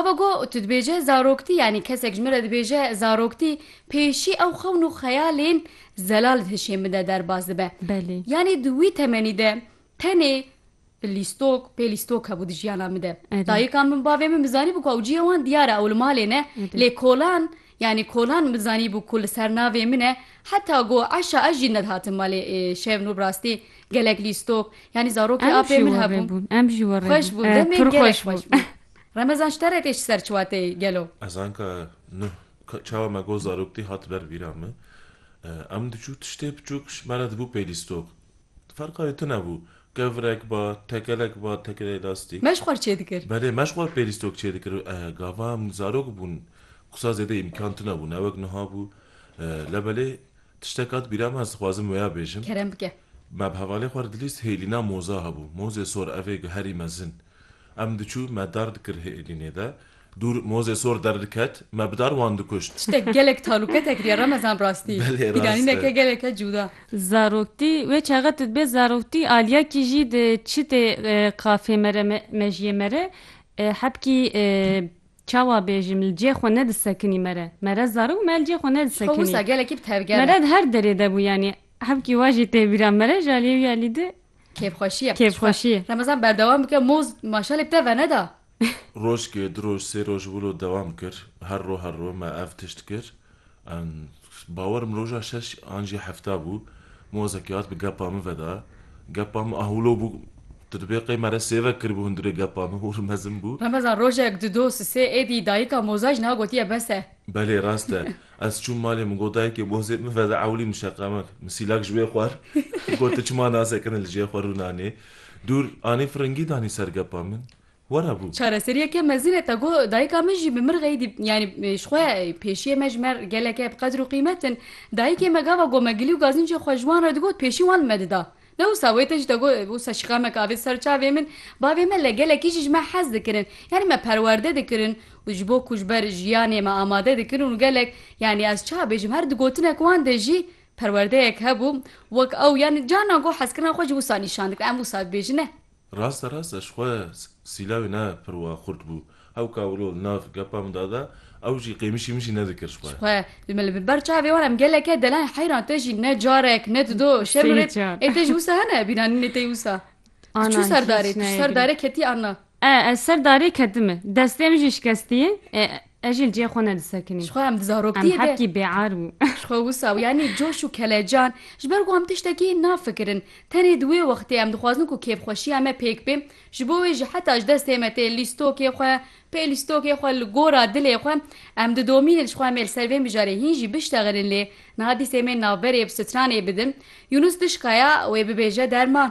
Hava ku tu dibêje zaroktî yanî kesek ji min re dibêje zaroktî pêşî ew xewn û xeyalên zelal di hişê min de derbas dibe. Belê. Yanî di wî temenî de tenê lîstok pê lîstok hebû di jiyana min de. Dayika min bavê min min zanîbû ku ew ciyê wan diyar e ew li malê ne lê kolan yanî kolan min zanîbû ku li ser navê min e heta ku eşa ez jî nedihatim malê şev nû bi rastî gelek lîstok yanî zarokê apê min hebûn. Em jî we re bûn. Xweş bûn demê gelek xweş bûn. Remezan ji te re tê ji ser çiwatê gelo. Ez anka nuh çawa me got zarok tê hat ber vîra min. Em diçû tiştê biçûk ji me re dibû pêlîstok. Ferqa wê tune bû. Kevirek ba, tekelek ba, tekelê lastîk. Me ji xwe re çê dikir. Belê me ji xwe re pêlîstok çê dikir. Gava em zarok bûn qisa zêde îmkan tune bû ne wek nuha bû. Le belê tiştek hat bîra min ez dixwazim wêya bêjim. Kerem bike. Me bi hevalê xwe re dilîst hêlîna moza hebû. Mozê sor evê guherî mezin. Em diçû me dar dikir hê Îlînê de. Dûr mozê sor derdiket me bi dar wan dikuşt. Tiştek gelek taluke tekiriye Remezan rastî. Belê rast e. Pîranîneke geleke cuda. Zaroktî, wê çaxe tu dibê zaroktî aliyakî jî di çitê qafê me re mejiyê me re hebkî çawa bêjim li cê xwe nedisekinî me re. Me re zarok me li cê xwe nedisekinî. Ji xwe wisa gelekî bi tevger e. Me re di her derê de bû yanî hebkî wa jî tê bîra me re ji aliyê wî alî di Kêfxweşî Kêfxweşî Remezan berdewam bike moz maşalek te veneda. Rojkê, du roj, sê roj wilo dewam kir. Her ro her ro me ev tişt kir. Bawer im roja şeş an jî hefta bû. Mozekî hat bi gepa min veda. Gepa min ah wilo bû. Tu dibê qey me re sêve kiribû hundirê gepa min wir mezin bû. Remezan rojek, du dos, sê êdî dayika moza jina gotiye bes e. Belê rast e. Ez çûm malê min got dayikê bozê min veda ewlî min şeqemek min sîlak ji wê xwar got tu çima nasekine li cihê xwe rû nanê dûr anî firingî danî ser gepa min were bû. Çareseriyeke mezin e te got dayika min jî bi min re dî yanî ji xwe pêşiyê me ji me re gelek e bi qedr û qîmet in dayikê me gava gomegilî û gazincên xwe ji wan re digot pêşî wan li me dida Ne wisa wê te jî te got wisa şikamek avê ser çavê min, bavê me li gelekî jî ji me hez dikirin. Yanî me perwerde dikirin û ji bo ku ji ber jiyanê me amade dikirin û gelek yanî ez çawa bêjim her di gotinek wan de jî perwerdeyek hebû wek ew yanî carna got hezkirina xwe jî wisa nîşan dikir em wisa dibêjin ne Raste rast ez xwe sîlawê ne pir wa xurt bû. Hew ka wilo li nav gepa min dada, ew jî qêmişî min jî nedikir ji xwe. Ji xwe li ber çavê wan em geleke deleng heyran te jî ne carek ne dido şerm rê ê te jî wisa hene bîranînê te wisa. Tu çû ser darê? Tu ji ser darê ketî an na? Ê ez ser darê ketime. Destê min jî şikestiye. Ez jî li cihê xwe ne disekinîm. Jixwe em di zaroktiyê be. Em hevkî bêar bû. Jixwe wisa bû. Yanî coş û kelecan ji ber ku em tiştekî nafikirin. Tenê di wê wextê em dixwazin ku kêfxweşiya me pêk bê. Ji bo wê jî heta ji destê me tê lîstokê xwe, pê lîstokê xwe li gora dilê xwe em didomînin jixwe em ê li ser vê mijarê hîn jî biştexilin lê niha dîsê mê navberê bi stranê bidin. Yunus dişkaya wê bibêje derman.